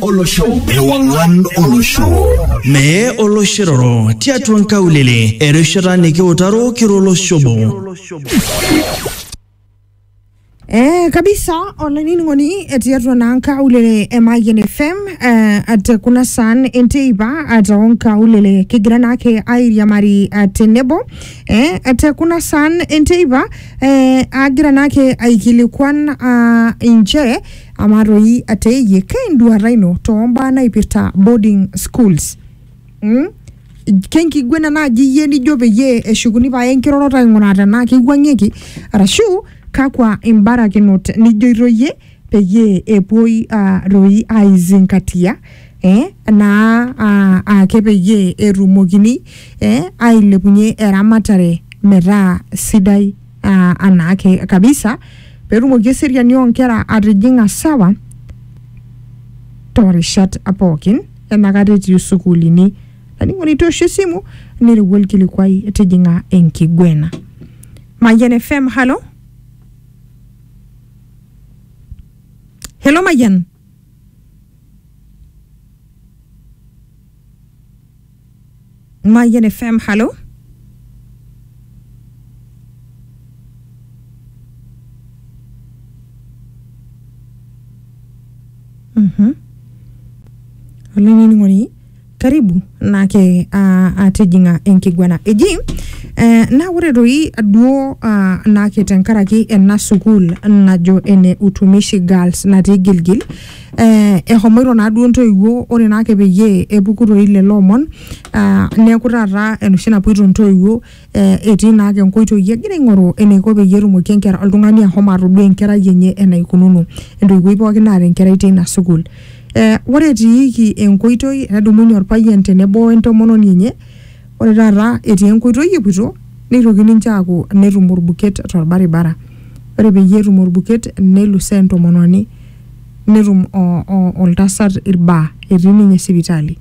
olosho ewang'an olosho mee oloshiroro tiatua nkaulele erishata nikiutaro kira olosho obo Eh, kabisa olainining'oni eh, tiatua naa nkaulele e Mayian FM eh, ate kuna saan enteipa ata onkaulele kigira naake airiamari ah, tenebo eh, ate kuna saan enteipa eh, agira naake aikilikuan ah, inchere Amaa toi ate iyie, keinduata ino too mbaa naipirta boarding schools? Mm? Kenkiguena naaji iyie nijo peyie eshukuni pae enkiroroto aing'uraa tenaa keiwuang'ieki arashu kakwa imbarakinot nijoito iyie peyie epuoi ah, toi aizingatia eh, naa ah, ake peyie etumokini eh, ailepunye eramatare metaa sidai. aa anaake kabisa petumoki eseriani onkera atijing'a sawa torishat pookin enakata etii sukuulini olainining'oni itoosho esimu nirriwua olkilikuai tijing'a enkiguena Mayian FM halo helo Mayian Mayan FM, hallo? Mhm. olainining'oni karibu naake ah, atijing'a enkiguana eji eh, naa ore toi duo ah, naake tenkaraki ena sukuul najo ene utumishi girls natii gilgil eh, ehomoito naa duo ntoiwuo ore naa ake peyie epuku toi lelo omon ah, neeku taata enoshi napuoito ntoiwuo eh, etii naa ake nkoitoi egira aing'oru eneiko peyie etumoki enkera oltung'ani ahomo atodua enkerai enye enaikununo entoiwuoi pookin naata enkerai teina sukuul eh, ore etiiki enkoitoi enedumunye orpayian tenebo wentomononi enye ore taata etii enkoitoi epuoito neitoki ninche aaku netum orbuket torbaribara ore peyie etum orbuket nelusoo entomononi netum oltasat ilbaa etii ninye sipitali.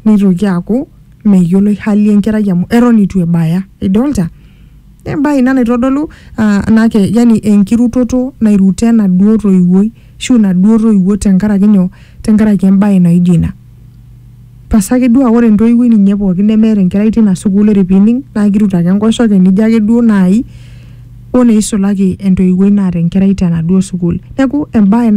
Neitoki aaku meyioloi hali enkerai amu eton eitu ebaya. Idolita? Naa embae ina naitodolu yani enkirutoto nairuto enaduo toiwuoi ashu inaduo toiwuo tenkaraki nyoo, tenkaraki embae naijo ina. pasa ake duo aa ore entoiwuoi ninye pookin nemeeta enkerai tina sukuul ore pining naa kirut ake enkoshoke nijo ake duo naai oneisulaki entoiwuoi naata enkerai tenaduo sukuul neku embaye naa